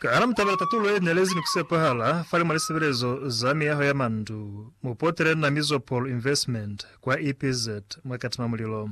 Ka hana mutabela tatulo ye nelezi ni kusepahala fale mwa lisebelezo za miyaho ya mandu, mu potele na Mizopol Investment kwa EPZ mwa Katima Mulilo.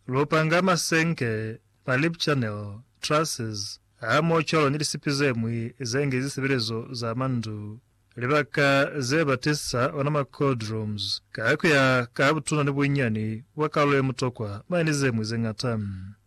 Lu panga masenke, ma lip channel, trusses, hamoho cwalo ni lisipi ze ñwi ze nge zisebelezo za mandu, libaka ze ba tisisa ona ma cold rooms, ka kuya ka butuna ni bunyani bwa kalulo ye mutokwa, mane ni ze ñwi ze ñata.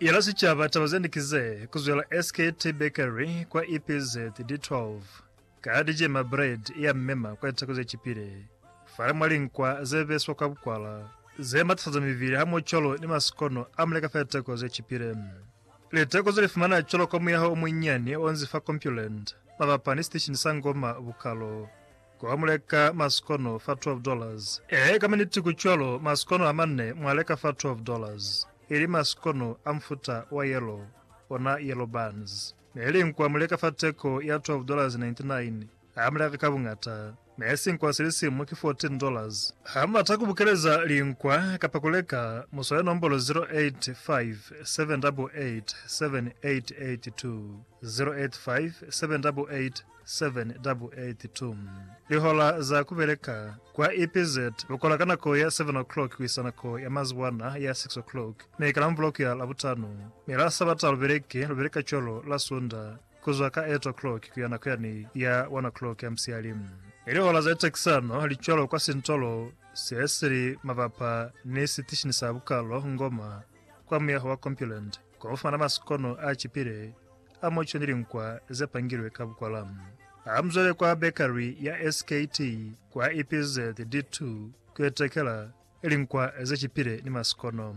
Yela sicaba taba zende ki ze, ku zwela SKT Bakery kwa EPZ di 12 ka di jema bread ya mmema kwa litako ze cipile, fale mwa linkwa ze beswa kwa bukwala, ze matafaza mibili hamoho cwalo ni masikono a muleka fa litako ze cipile. Litako ze li fumana cwalo ka muyaho o munyinyani onzi fa Compuland, mabapa ni siteshini sa Ngoma Bukalo. Ku ba mu leka masikono fa twelve dollars. Ee, ka miniti ku cwalo, masikono a manne mwa leka fa twelve dollars, ili masikono a mufuta wa yellow, ona yellow buns. Ne li nkwa mu leka fa teko ya twelve dollars ninety nine, ha mu leka ka buñata. Ne sinkwa si li simu ki fourteen dollars. Ha mu bata ku bukeleza linkwa kapa ku leka, mu swale nombolo zero eight five seven double eight seven eight eight two, zero eight five seven double eight 782 Lihola za kubeleka kwa EPZ lukola ka nako ya 7 o'clock kuisa nako ya mazuwana ya 6 o'clock, mi ka Lamubuloko ya Labutano, mi la Sabata lubeleki lubeleka cwalo la Sunda kuzwa ka 8 o'clock kuya nako yani ya 1 o'clock ya musiyali. Mi lihola za litekisano li cwalo kwa sintolo se sili mabapa ni sitishini sa bukalo Ngoma kwa muyaho wa Compuland. Kwa kufumana masikono a cipile a muco ni linkwa ze pangilwe ka bukwala, hamuzwale kwa Bakery ya SKT kwa EPZ D2 kuyo tekela linkwa ze cipile ni masikono.